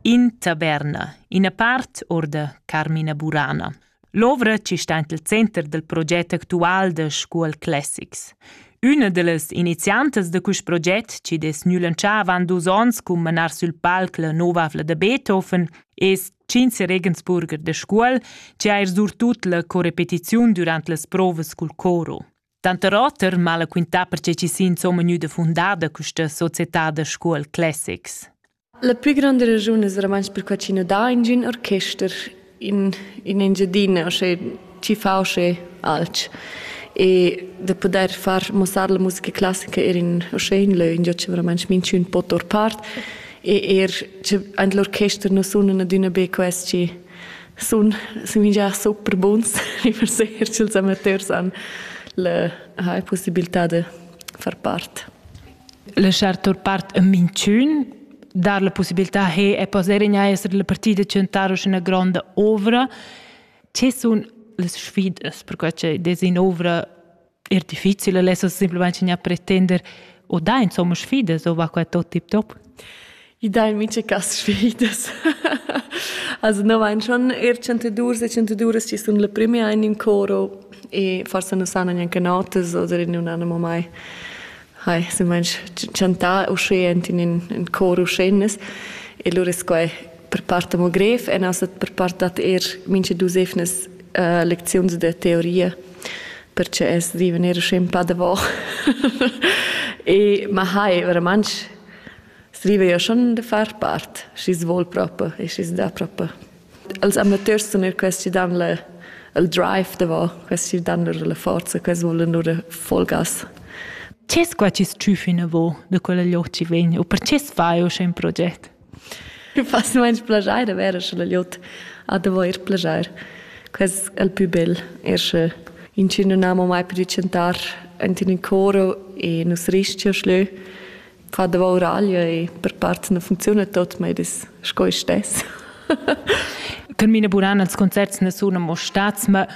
In taverna, ina part or da Carmina Burana. L'ovra ci sta int il center del proget actual de Scuol Classics. Üna de las iniziantas de quist proget, ci des nülanchà avant dus ons cum manar sül palc la nova avla de Beethoven, es Cinze Regensburger de Scuol, ci ha er surtut la corepetiziun durant las provas cul coro. Tanter oter m'ha la quintà perche chi s'ha insomma gnüda fundada quista società da scuol Classics. La plü granda ragiun es eramans perquai chi nu dà ingün orchester in, in Engiadina, osché chi fa osché alch. E da pudair far muossar la musica classica eir in osché in lö ingio chi veramans minchün po tour part e eir che aint l'orchester nu sunan adüna be quels chi sun, sun minchar super buns riverseer ch'ils amateurs han la ha possibilità da far part. Laschar tur part a minchün dar la possibilità che e poter in essere la partida centrare una grande ovra. Che sun le sfidas per quella des in ovra er difficile lessa simpelmente gnir pretender o da insomma sfidas o va qua tot tip top I dai mica cas sfidas. also no vain schon er chantadours e chantaduras chi sun la prima in in coro e forse non sanno neanche notas oder in un animo mai. Hai, se manch chantà uschè ent in ün, ün cor uschennas e lura es quai per part amo grev e na stat per part dad eir mincha duos eivnas uh, lecziuns da teoria perche es viven eir uschè ün pa davò. e ma hai veramente scrive io schon da far part, schi's vuol propo e schi's dà propo. Els amateurs sun eir quels chi dan la il drive davo, quels chi dan lur la forza, quels volan lur folgas. Ce squa chi s-chüf inavo da quella lioch chi vegn u perche s'fai usche ün proget? Fas nu aint plajair da vere sche la liot ha da voir plajair. Quest è il più bel, er sche inci nun amo mai pudü chantar ant in ün coro e nus rischia schlö fa davouraglia e per part non funcziuna tot, ma es sco ich stess. Termina buran als concerts ne sun amo stats, ma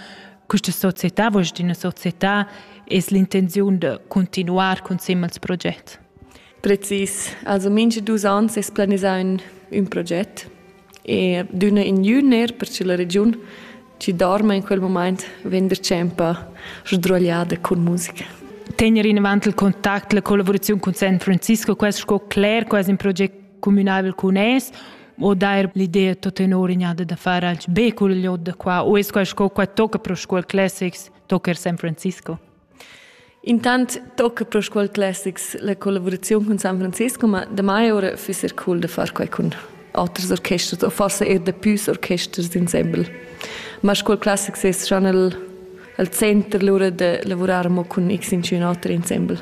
questa società, vuoi dire, una società, es l'intenzione di continuare con il progetto? Precis. Also mindestens dus ans es planisà un, un progetto. E d'üna in ün eir perche la regiun chi dorma in quel mumaint vegn dachempa sdruagliada cun musica. Tegner inavant il contact, la collaboraziun cun San Francisco, quest sco cler quasi un proget communabel cun es o dair l'idea tot tenor ignada da far anche be cul liot da qua o es quai sco qua tocca pro scuol classics tocca er San Francisco? Intant tocca pro Scuol Classics la collavuraziun cun San Francisco, ma damai ora füss er cool da far quai cun oters orchesters o forsa er da püs orchesters insembel. Ma Scuol Classics es schon al, al center lura da lavurar mo cun x in oters insembel.